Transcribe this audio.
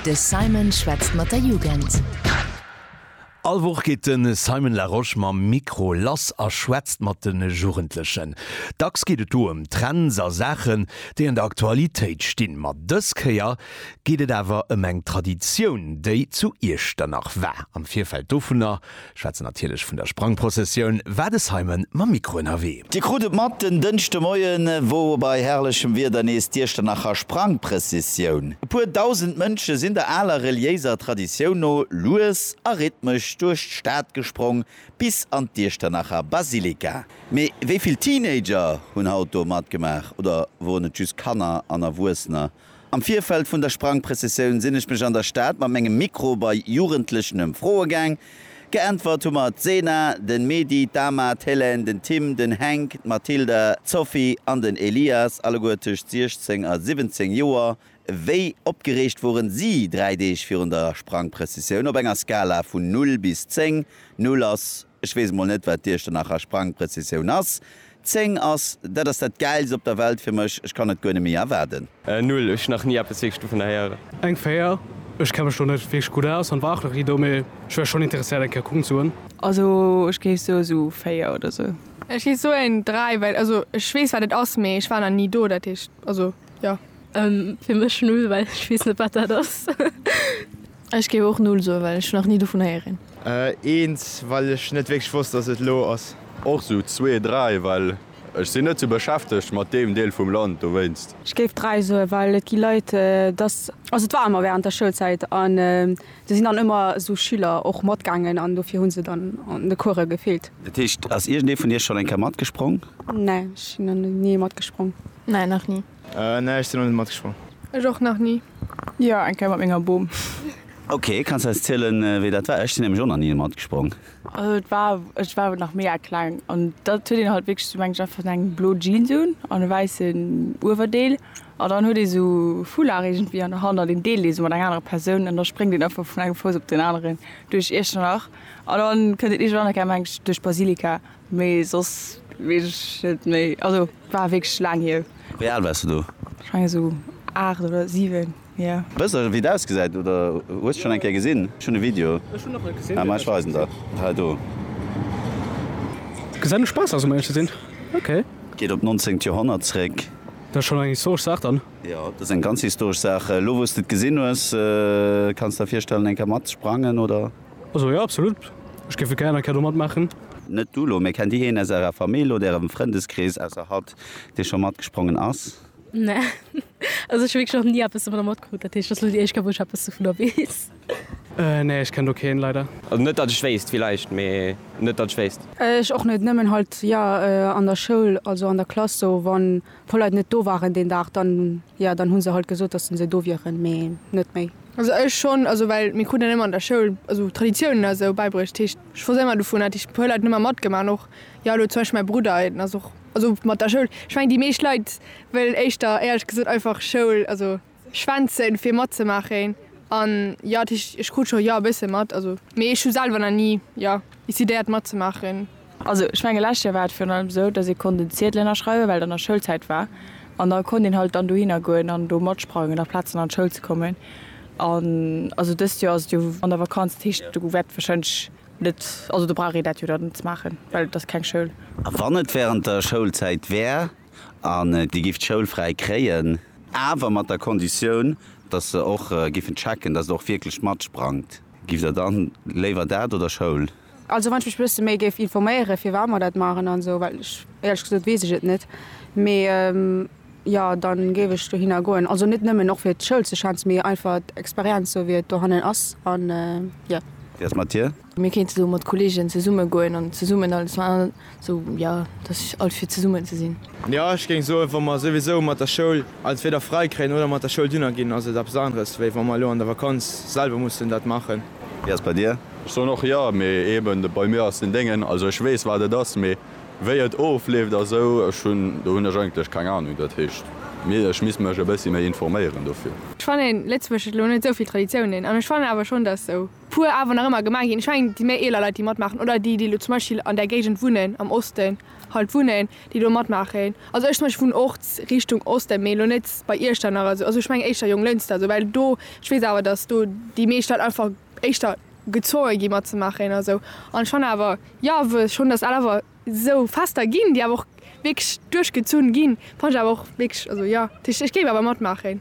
De Simon schwätzt mat der Jugend. All Woch geet de Simon Larosche mam Mikro lass a schwätzt mat de Jugendlechen. Dacks geet et do ëm Trends a Saachen, déi an der Aktualitéit stinn. Ma dës Kéier geet et awer ëm eng Traditioun, déi zu Iechternach war. Am Virfeld dovunner Schwätzen natierlech vun der Sprangprozessioun, war de Simon mam Mikro ënnerwee. Dir krut et mat, den Dënschdemoien wor bei herrlechem Wieder nees d'Iechternacher Sprangprëssessioun. E puer dausend Mënsche sinn der aler reliéiser Traditioun no lues a rhythmesch duerch d'Stad gesprong bis an d'Iechternacher Basilika. Mee wéi vill Teenager hunn haut do matgemaach oder woren et just Kanner an Erwuessener Am Virfeld vun der Sprangprëssessioun sinn ech mech an der Stad mat mengem Mikro bei Jugendlechen ëm Froe gaang. Geäntwert hu mer d'Sena, den Medy, d'Ama, d'Hélène, den Tim, den Hänk, d'Mathilda, d'Sophie an den Elias, alleguer tëscht 16 a 17 Joer. Wéi opgereegt woren si 3 Deeg virun der Sprangprëssessioun? Op enger Skala vun 0 bis 10, 0 ass Ech weess mol net wat dir ech der nach a Sprangprezessioun ass. Zéng ass, dat ass dat gäilst op der Welt fir mech. Ech kann et guer net méi erwaarden. Null, ech hunn nach ni eppes wierklech dovunner héieren. Eng Véier, ech kenne mech do net wierklech gutt aus an war och nach ni do, mee ech wär schonn interesséiert eng Kéier kucken ze goen. Also ech géif soe sou véier oder sou. Ech géif soen dräi, well also ech weess wat et ass, mee ech war nach ni do, dat heescht also jo. Fir mech null, well ech weess net wat dat ass. Ech géif och null soen, well ech nach ni dovun héieren. Eens, well ech net wierklech wosst, dass et elo ass. Och sou zwee, dräi, well ech sinn net sou beschäftegt mat deem Deel vum Land dowéinst. Ech géif dräi soen, well et gi Leit, dass, also et war ëmmer während der Schoulzäit an do sinn dann ëmmer sou Schüler och matgaangen an dofir hu se dann an de Course gefeelt. Dat heescht, ass iergendee vun Iech schonn eng Kéier matgesprong? Nä, ech sinn nach ni matgesprong. Nä, nach ni. Nee, ech sinn nach net matgeschwommen. Ech och nach ni. Jo, eng Kéier mat menger Bom. Ok, kanns eis zielen wéi dat war? Ech sinn nämlech och nach ni matgesprongen. Also et war, ech war awer nach mega kleng an da huet een halt wierklech, du mengs einfach eng blo Jeans un an e wäissen Uewerdeel an dann huet ee sou Foulard iergendwéi an der Hand an deen deelt ee sou mat enger anerer Persoun an da spréngt een einfach vun engem Fouss op den aneren duerch Iechternach an dann kënnt een iergendwann, mengen ech, duerch d'Basilika. Mee soss wees ech net méi, also war wierklech laang hier. Wéi al wars de do? Ech mengen esou 8 oder 7, jo. Wëss de wéi et ausgesäit oder hues et schon eng Kéier gesinn? Ech hunn e Video, mä ech weisen der et hei do. Gesäit no Spaass aus, um éierlech ze sinn. Ok. Geet op d'nonzéngt Joerhonnert zréck. Dat ass schonn eng historesch Saach dann. Jo, dat ass eng ganz historesch Saach. Elo wou s de et gesinn hues, kanns de der virstellen eng Kéier matsprangen oder? Also jo absolut, ech géif et geier eng Kéier do matmaachen. Net du lo, mee kennt dir een aus ärer Famill oder ärem Frëndeskrees ausser hatt, dee scho matgesprongen ass? Nee, also ech hu wierklech nach ni eppes dovunner matkrut, dat heescht et ass lo déi éischt Kéier, wou ech eppes dovunner weess. Nee, ech kenn do keen, leider. Also net dat ech wéisst, villäicht, mee net dat ech wéisst. Ech och net, nëmmen halt jo an der Schoul, also an der Klass sou, wann e puer Leit net do waren deen Dag, dann jo, dann hu se halt gesot, dass se do wieren, mee net méi. Also ech schon, also well mir kruten emmer an der Schoul also Traditiounen a sou beibruecht, dat heescht ech wosst emmer dovun, hat ech puer Leit emmer matgemaach an och jo elo zum Beispill mäi Brudder en ass och also mat der Schoul, ech meng déi meescht Leit wëllen éischter éierlech gesot einfach Schoul also schwänzen fir matzemaachen an jo dat heescht ech krut scho jo e bësse mat also mee ech hu selwer na ni jo décidéiert matzemaachen. Also ech menge lescht Joer war et virun allem esou, datt ee konnt en Ziedel ënnerschreiwen, well et an der Schoulzäit war. An da konnt een halt dann dohinner goen an do matsprangen a Plazen an d'Schoul ze kommen. An also dëst Joer ass et jo an der Vakanz, dat heescht do wäert warscheinlech net, also do brauch ee dat jo dann net ze maachen, well et ass keng Schoul. A wann et während der Schoulzäit wär an dir gifft d'Schoul fräi kréien, awer mat der Konditioun, datt se och giffen checken, datt der och wierklech matsprangt, giff der dann léiwer dat oder Schoul? Also wann ech mech bësse méi géif informéiere firwat mer dat maachen an esou, well ech éierlech gesot weess ech et net, mee jo dann géif ech dohinner goen, also net nëmmen och fir d'Schoul ze schwänzen, mee einfach d'Experienz esou wéi et dohannen ass an jo. Wéi ass mat dir? Mir kéinte sou mat Kollegen zesumme goen an zesummen alles man. So jo, dass ech alt fir zesummen ze sinn. Jo, ech géing soen, wa mer souwisou mat der Schoul entweder frai kréien oder mat der Schoul dunner ginn, ass et eppes aneres wéi wa mer elo an der Vakanz selwer mussen dat maachen. Wéi ass et bei dir? Ech soen och jo, mee eben bei mir ass den Déngen, also ech weess wat et ass, mee wéi et ofleeft a sou, ech hunn, do hunn ech eigentlech keng Ahnung. Dat heescht, ech misst mech e bëssi méi informéieren dofir. Ech fannen, Lëtzebuerg huet elo net esou vill Traditiounen an ech fannen awer schonn, dass sou puer awer nach ëmmer gemaach ginn. Ech mengen, déi méi eeler Leit, déi matmaachen, oder déi, déi elo zum Beispill an där Géigend wunnen, am Osten halt wunnen, déi do matmaachen. Also ech zum Beispill wunnen och Richtung Osten, mee elo net bei Iechternach oder esou. Also ech mengen éischter Jonglënster esou, well do, ech weess awer, datt do déi meescht Leit einfach éischter gezwonge gi matzemaachen oder esou. An ech fannen awer, jo, wou schonn, datt al awer esou Fester ginn, déi awer och wierklech duerchgezunn ginn, fannen ech awer och wierklech, also jo, ech géif awer matmaachen.